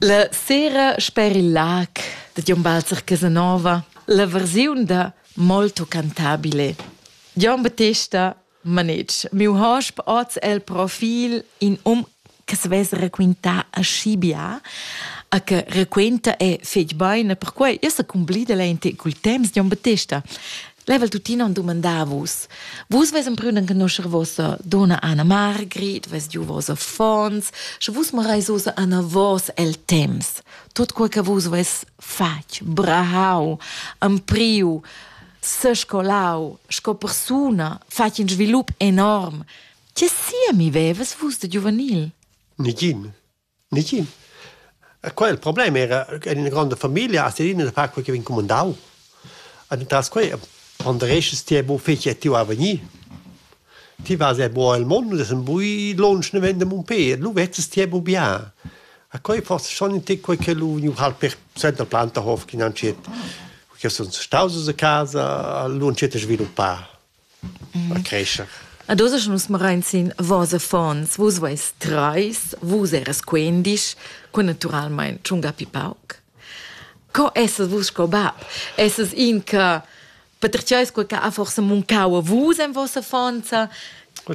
La sera sper il lag da Gion Balzer Casanova la versiun da Molto cantabile. Gion Battista Manetsch, miu hosp oz el profil in um che se vess raquintà aschi bia, a che raquenta e fetg beine, perquei io sa cumblida lente cul temps Gion Battista. Level tuttina on dumandà a vus. Vus ves emprüden conoscer vossa donna Anna Margrit, ves giu vos affons, sche vus marais osa Anna vos el temps. Tot quel che vus ves fatg, brahau, ampriu, sescolau, sco persuna, fatg in svilup enorm. Che sia mi veves vus de giuvenil? Nigin. Nicin. Quel il problem era en ina gronda famiglia as ina da far quei che vegn cumandau. Ed entras quei ponderesches ti bu fetg tiu a vegnir. Ti vas er bu el mond e sen bui lunsch ne vende mun pe, lu vezzes ti bu bien. A quei forse schon in tic quei che lu vegniu halt per senta Plantahof chi nan schet, che sun staus a casa, lu han schet da sviluppar. creescher. Ad oz nus marain sin vos affons, vus veis trais, vus eras quendisch, qua naturalmein tschunga pi pauc. Co essas vus sco bab? Essas in che patertgeis quel che ha forsa muncau a vus en vossa affonza?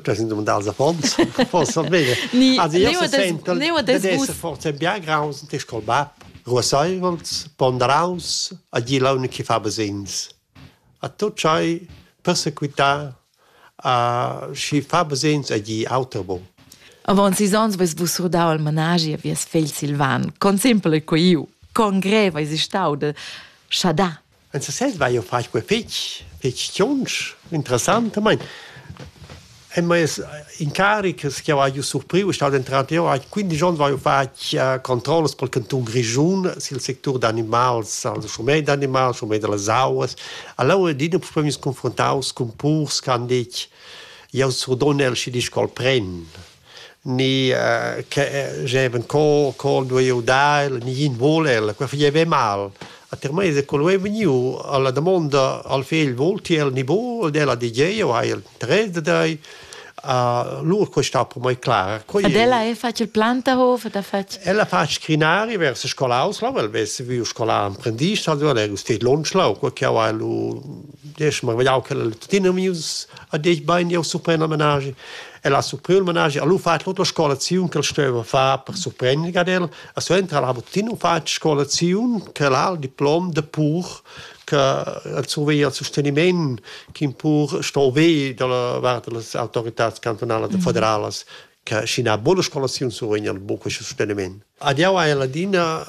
Das sind dumandar als affons, forsa bene. Ni, also io se sento d'essere forse bien graus, de scol bab. Ruasseivels, ponderaus, a dir l'unica che fa besins. A tut tschai persequitar a schi fa basegns a gnir auter bon. Avaunt sis ons vais vus surdau al managi a vies fegl Silvan. Con simpel ei quei iu? Con grev eis stau de schadar? En sesez vai jeu far quei fetg, fetg tschunsch, interessant. Mein, En meis incarics che ho haiu surpriu è stat denter auter eau quindisch ons vaiu fatg controllas pel cantun Grischun sül sectur d'animals, al schurmet d'animals, schurmet da las auas. Alura adina purtà meus confruntaus cun purs che han dit jau surdonel schi disch ch'el pren, ni che gievan co co duei eu dar el, ni ün vul el, quai fagev mal. A termeis è quel vegniu alla damonda al fegl volti el ni bu ed ella di tgei eu hai interess da dei a lur questa per mai clara. Quei Ed ella è fatg il Plantahof da fatg. Ella fa scrinari vers scolaus la vel ves viu scola apprendist ha du er stet lonschlau ko che ha lu des mar vediau che tuttina mius a dei bein jau surprender menage. Ella surpriu il menage a lu fa l'auto scola ziun che steva fa per surprender ad el E suenter ha tuttina fatg scolaziun che l'ha il diplom de pur che el surveglia il sosteniment ch'in pur sto ve dalla vart delle autoritats cantonalas e federalas che scina buona scolaziun survegnan buca questo sosteniment. Ad jau hai ladina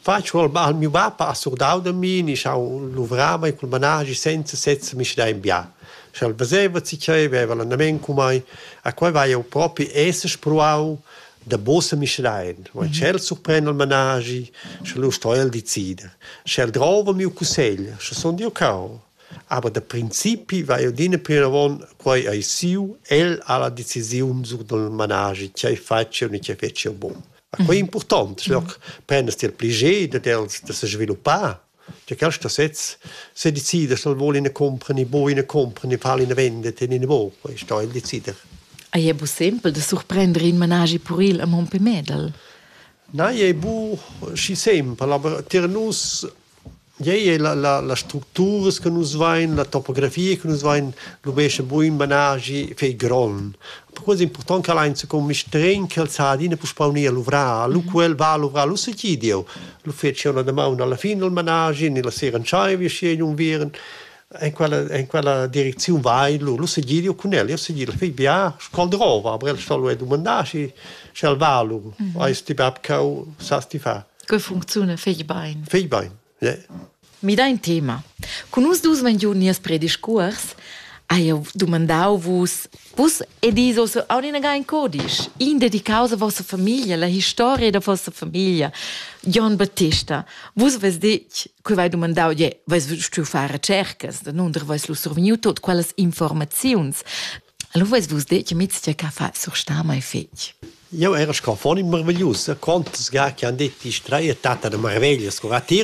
faccio al, al mio bapa ha surdau da mi ni schau luvrava e col managi senza sezza mi da in bia schel veseva si chei veva l'andament cu mai a quei vai eu propi esse spruau Dabos a Mischrein, wo in tschel surpren il managi, sche lu sto el decida. Sche el drova miu cussegl, sche sun jeu cau. Aber da principi va jeu adina plinavon, quei ei siu, el ha la decisiun sur dal managi, tgei fatg jeu ni tgei fetg jeu bun. Ma quei è important, sche prendas ti il pli ged dad els da sesviluppar Cha quaista sez sedecidas dal voul ina compra ni bo ina compra ni far ina vendita in ina vopa e sto el decider. Ei è bu sempel da surprender in managi puril a Monte Medel. Na, ei è bu schi sempel, aber tier nus ei è la, la, la structuras che nus vain, la topografia che nus vain, lubescha buin managi fei gron. Quasi important che ein secun mistregn che el sa adina puspau ni a luvrar. Lu quel va a luvrar, lu segi Dieu. Lu feci una damaun alla fin del managi, ni la sera entschei vi schi un viren. En quella, en quella direcziun vai, lu, lu segi Dieu cun el. Io segi la fig bia, scol drova, aber el stol lu dumandar, schi sch'el va lu. Mm -hmm. Eis ti bab cau, sas ti fa. Che funziona fig bein? Fig bein. Midà in tema. Cun nus dus vegn giu nies prediscuors. Ha jeu dumandau vus, vus ed is ossa aun inaga in codisch, in dedicaus a vossa famiglia, la historia da vossa famiglia. Jon Battista, vus veis detg, quei vai dumandau, je, veis stuiu far recercas, da nunder veis lu survegniu tot quellas informaziuns. Allora veis vus detg, mits tgei ca fa sur stama e fetg. Eu era sconfon in marveglius, contas ga che han detto die Streier Tata de Marveglia sco a tir